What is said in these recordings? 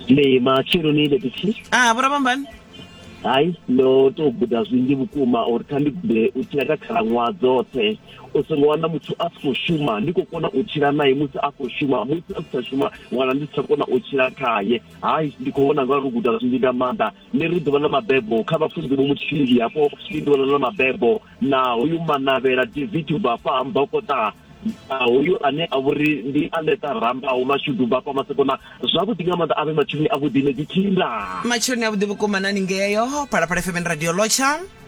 le matsheloni ile pithi ah vho rabambani hayi ndo to guda zwinzhi vhukuma uri kha ndi gude u tshila kha khalaṅwaha dzoṱhe u songo wana muthu a si khou shuma ndi khou kona u tshila naye musi a khou shuma musi a si tsha shuma wana ndi si tsha kona u tshila khaye hayi ndi khou vhona nga uri u guda zwinzhi nga maanḓa Ḽi ri ḓuvha ḽa mabebo kha vhafunzi vho muthihi hafho ndi ḓuvha ḽa mabebo na hoyu Manavhela David ubva hafha ha Mbokota na hoyu ane a vhori ndi Aletha Ramba hu mashudu ubva hafha Masekona zwavhuḓi nga maanḓa avhe matsheloni a vhuḓi ne dzi thinda. Matsheloni a vhuḓi vhukuma nani ngeyo Phalaphala FM and Radio Lotsha.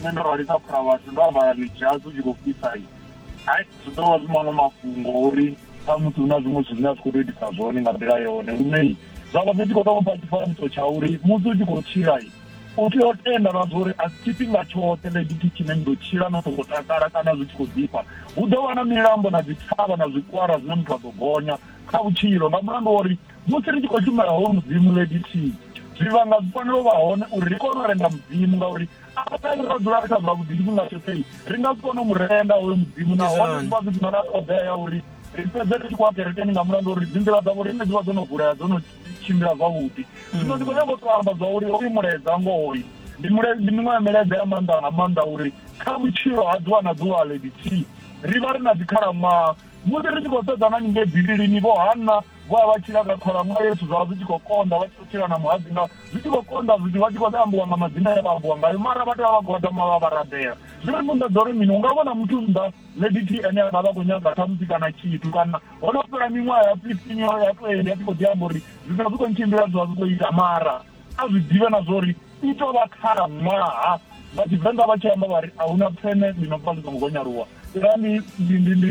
nṋe ndo rali kha phuraivasi ndo ambara midzhasi u tshi khou fhisa i hai zwi ḓo vha zwi maṅwe mafhungo uri khamusi hu na zwiṅwe zwithu zwine a zwi khou tou itisa zwone nga nḓila yone lune zwa vha zwi tshi khou tou vha tshifanyiso tsha uri musi u tshi khou tshila u tea u tenda na zwa uri a si tshifhinga tshoṱhe ḽegithi tshine ni ḓo tshila no songo takala kana zwi tshi khou ḓifha hu ḓo vha na milambo na dzi thavha na zwikwara zwine muthu a ḓo gonya kha vhutshilo nga mulandu wa uri Musi ri tshi khou shumela hoyu Mudzimu, Lady T, zwivhanga zwi fanela u vha hone uri ri kone u renda Mudzimu ngauri arali ra dzula ri kha zwavhuḓi tshifhinga tshoṱhe ri nga si kone u mu renda hoyu Mudzimu nahone zwi vha zwi si na ṱhoḓea ya uri ri fhedze ri tshi khou a kerekeni nga mulandu uri dzinḓila dzavho riṋe dzi vha dzo no vulea dzo no tshimbila zwavhuḓi zwino ndi khou nyanga u to amba zwa uri hoyu mulaedza ngohoyu ndi ndi miṅwe ya milaedza ya maanḓa nga maanḓa uri kha vhutshilo ha ḓuvha na ḓuvha lady t ri vha ri na dzikhalaṅwaha musi ri tshi khou sedzana ningei bivhilini vho hanna vho vha vha tshila nga khalaṅwaha yethu zwa vha zwi tshi khou konḓa vha tshi khou tshila na muhadzi nga zwi tshi khou konḓa zwithu vha tshi khou ambiwa nga madzina ya vha ambiwa ngayo mara vha tea vha gwadama vha vha rabela zwino ndi nḓaḓa uri mini u nga vhona muthu nnḓa lady t ene a nga vha khou nyaga khamusi kana tshithu kana ho no fhela miṅwaha ya fifteen yo ya twenty a tshi khou ḓi amba uri zwithu zwi khou ntshimbila zwi vha zwi khou ita mara a zwi ḓivhe na zwa uri i tou vha khalaṅwaha vha tshivenḓa vha tshi amba vha ri a huna pfene ḽi no pfa ḽi songo gonyaluwa ndi ndi ndi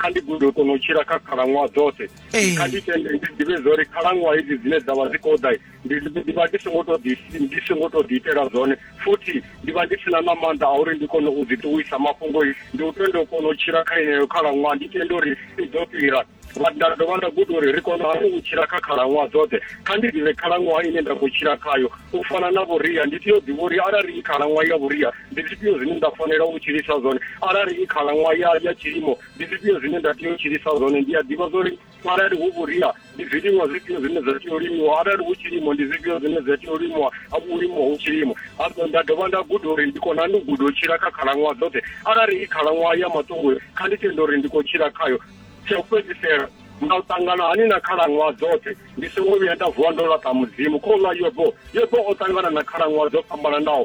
kha ndi gude u kona u tshila kha khalaṅwaha dzoṱhe kha ndi tende ndi ḓivhe zwa uri khalaṅwaha hedzi dzine dza vha dzi khou ḓa ndi vha ndi songo to ndi songo to ḓiitela zwone futhi ndi vha ndi sina na maanḓa a uri ndi kone u dzi ṱuwisa mafhungo ndi u tenda u kona u tshila kha yeneyo khalaṅwaha ndi tenda uri i ḓo fhira nda dovha nda guda uri ri kona hani u tshila kha khalaṅwaha dzoṱhe kha ndi ḓivhe khalaṅwaha ine nda khou tshila khayo u fana na vhuria ndi tea u ḓivha uri arali i khalaṅwaha ya vhuria ndi zwifhio zwine nda fanela u tshilisa zwone arali i khalaṅwaha ya ya tshilimo ndi zwifhio zwine nda tea u tshilisa zwone ndi a ḓivha zwori arali hu vhuria ndi zwiliṅwa zwifhio zwine zwa tea u limiwa arali hu tshilimo ndi zwifhio zwine zwa tea u limiwa u limiwa hu tshilimo nda dovha nda guda uri ndi kona ndi u guda u tshila kha khalaṅwaha dzoṱhe arali i khalaṅwaha ya maṱungu kha ndi tende uri ndi khou tshila khayo tsha u fhedzisela nga u ṱangana hani na khalaṅwaha dzoṱhe ndi songo vhuya nda vuwa ndo laṱa mudzimu kho ḽa yobo yobo o ṱangana na khalaṅwaha dzo fhambananaho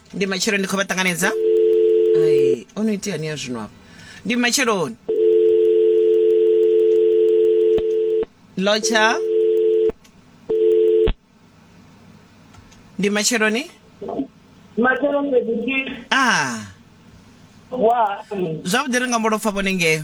ndi matshelo ndi khou vha ṱanganedza ai o no itea ni ya zwino afho ndi matsheloni lotsha ndi matsheloni matshelo fhedzi a wa zwavhuḓi ri nga mbo lopfa vhone ngeyo